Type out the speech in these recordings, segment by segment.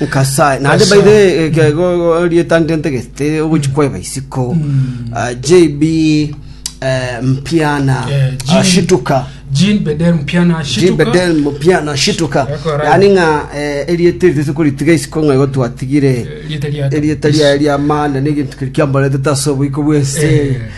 Nyasae naende by the way, ke- go- go- rieta ndentegete ogochi kwaeba isiko Ah, jb eh, mpiana Eh, ah, Jean- shituka Jean Bedel Mpiana Shituka. jbedel mpiana shituka Yakora. yani ng'a eh, erieta eri tese koritiga isiko ng'a igo twatigire Eh, rieta ria- erieta ria ria maana negintu keri kiamboretete ase oboiko bwense Eh.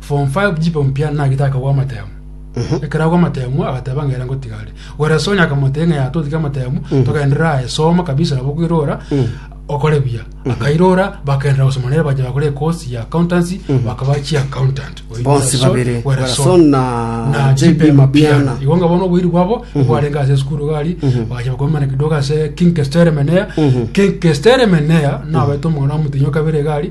Form Five chipo mpia nagete akagwa amatemo. Ekero agwa amatemo agateba ng'a ere ngotiga are. Werasoni akamotebia ng'a yatotige tiga amatemo togenderera aye soma kabisa nabo kwirora okore buya. Akairora bakaenderera gosoma nere bacha bakora ekosi ya accountancy bakaba chi accountant. Oyo Bonsi Werasoni- babere, Werasoni na na JB JB Mapiana. Mapiana. Igo ng'a bono oboiri bwabo bwarenge ase esukuru gari bagacha bakomana kidogo ase King Kestere Menea. King Kestere Menea nabaete omong'ina omotenyo kabere egari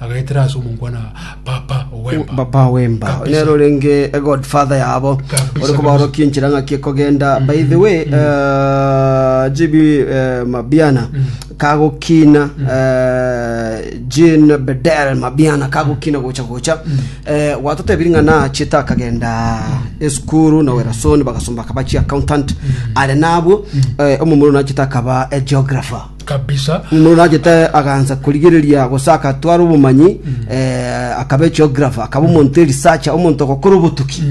Agaetera ase omonkwana, Papa ow'emba. Papa ow'emba Kabisa. nere orenge god father yabo Kabisa, ore kobaorokia enchera ng'aki ekogenda by the way eh, gb eh, mabiana kagokina eh, jean bedel mabiana kagokina gocha gocha Eh, gwatotebirie ng'a nachete akagenda esukuru na werasoni bagasomba akaba chi accountant are nabwo eh, omomura nachete akaba eh, geographer kabisa. Omonto nachete agansa korigereria gose agatwara obomanyi eh, akaba egeographer akaba omonto erisacha omonto ogokora obotuki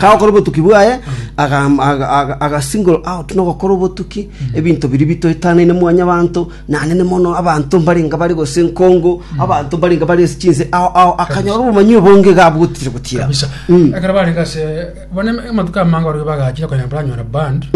kagokora obotuki bwaye aga- aga- aga- agasingle out nogokora obotuki ebinto biri bitoetanaine mwanyabanto nanene mono abanto mbarenga bare gose nkongo abanto mbarenga bare ase chinse ao ao akanyora obomanyi obonge iga abwotire gotira kabisa ekero bari gase bone amatuko amange orige bagachire konya baranyora band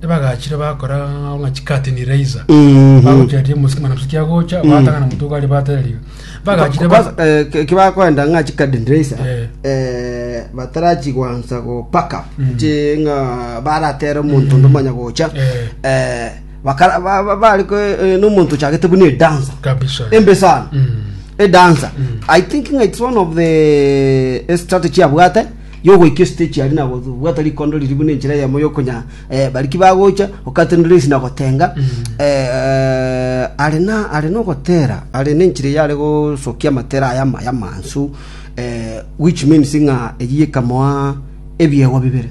Ebagachire bakora ng'a chikati ni reiza Ehe. bagochiaria mosima na mosiki agocha batang'ana motuko ari batereria bagachire ba- Kwanza, eh, ke- kibakoenda ng'a chikadendresa Eh. eh, batarachi gwansa gopaka chi ng'a baratere omonto onde omanya gocha Eh. eh, bakara- ba- ba- bari ko- eh, nomonto ochagete buna edansa kabisa embe sana Mm. edansa i think ng'a its one of the eh, strategy abwate y'ogoika esitechi aria na gobwata rikondo riria buna enchera eyemo y'okonyaa eh, bariki bagocha gokatenena ensi na gotenga eh, eh, are na are nogotera are nenchera eyare gosokia amatera aya amaya amansu eh, which means ng'a eyio ekamoa ebiegwa bibere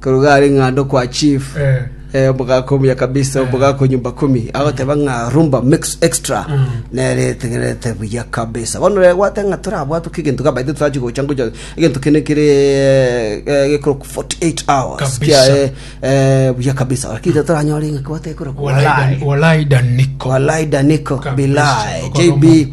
Korwa are ng'a ndokwa chief eh, omogaka omuya kabisa omogaka o nyumba kumi agoteba ng'a rumba mix extra nere etegerete buya kabisa bono rero gwate ng'a torabwatwe kegento gabaite torachi gocha ngocha egento kene kere eh, eh, gekoro 48 hours Kabisa. kiaye eh, buya kabisa lakini toranyore ng'a kwate ekoro Walai Dan- walai daniko Walai Daniko, Kabisa. Bilai, Okoroma. JB,